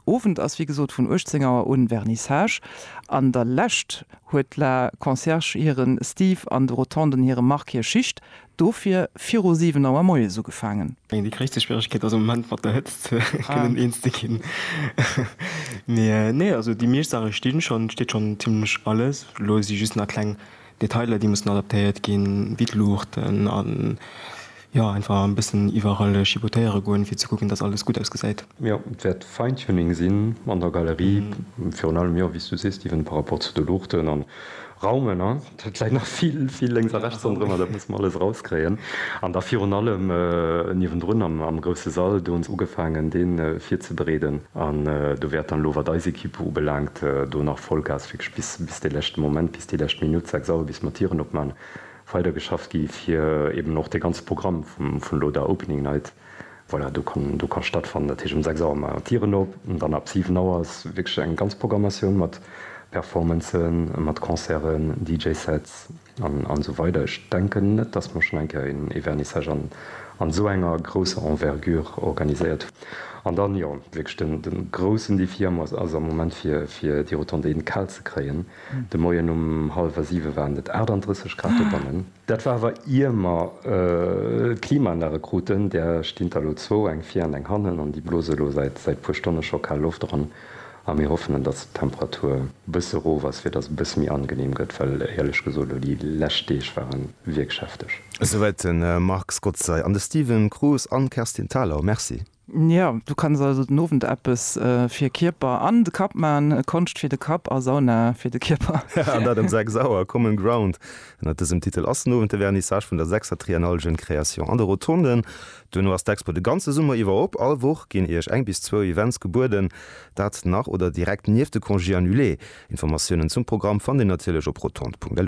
Owend ass wéi gesot vun 18 Auer un Vernissage. An der Lescht huet d'La Concierge hire Steve an de Rotonden hire Marc hir Schicht dofir viru 7 Auer moies ugefaangen. Déi gréisste Schwieregkeet ass am Moment mat der Hëtzt kënnen eens ze ginn. Mee nee, also déi meescht Saache stinn schonn, et steet schonn zimmlech alles. Lo si just nach kleng Detailer déi mussen adaptéiert ginn, wéi d'Luuchten an jo einfach en bëssen iwwerall chipotéiere goen fir ze kucken dass alles gutt ausgesäit. Jo, et wäert Fine-Tuning sinn an der Galerie, virun allem jo wéi s du sees Steven par rapport zu de Luuchten an Raumen, hein, et läit nach vill vill lénks a rechts ronderëmmer, dat musse mer alles erauskréien an da virun allem niewendrun am grousse Sall, do hunn se ugefaangen dee virzebereeden an do wäert dann elo wat eis Ekipp ubelaangt do nach Vollgas wierklech bis bis de leschte Moment, déi lescht Minutt, 6 Auer, bis mer d'Tieren opman, weider geschafft gi fir eben och de ganze Programm vun elo der Opening Night, voilà, do kann do kann stattfannen. Dat heescht um 6 Auer man d'Tieren op an dann ab 7 Auer ass wierklech eng ganz Programmatioun mat Performancen, mat Concerten, DJ Sets an an esou weider. Ech denken net, dass mer schonn eng Kéier een ee Vernissage an an esou enger grousser Envergure organiséiert hunn. An dann, jo, wierklech den den groussen Defi am ass am Moment fir fir déi Rotonde in d'Kal ze kréien. De Moien um hallwer siwe waren et 38 Grad dobannen. Dat war awer ier mer d'Klimaanlage kruten. Där stinn der elo zwou, eng vir an eng hannen, an déi blose elo säit e puer Stonne scho kal Loft eran. A mir hoffen, datt d'Temperatur e bësse erof ass, fir datt et e bësse méi angeneem gëtt, well éierlech gesot elo déi lescht Deeg ware wierklech hefteg. Esouwäit de Marc Scotzer. An de Steven Cruz an d'Kerstin Thalau, Merci. Jo, du kanns also den Owend eppes fir Kierper an de Kapp man, Konscht fir de Kapp a Sauna fir de Kierper. Ja, an dat ëm 6 Auer. Common Ground, ënner dësem Titel ass den Owend de Vernissage vun der sechster Triennale Jeunes Créations an de Rotonden. Duerno ass d'Expo de ganze Summer iwwer op. All Woch ginn iech eng bis zwou Events gebueden, dat nach oder direkt nieft de Congés annulés. Informatiounen zum Programm fannt dir natierlech op rotond.lu.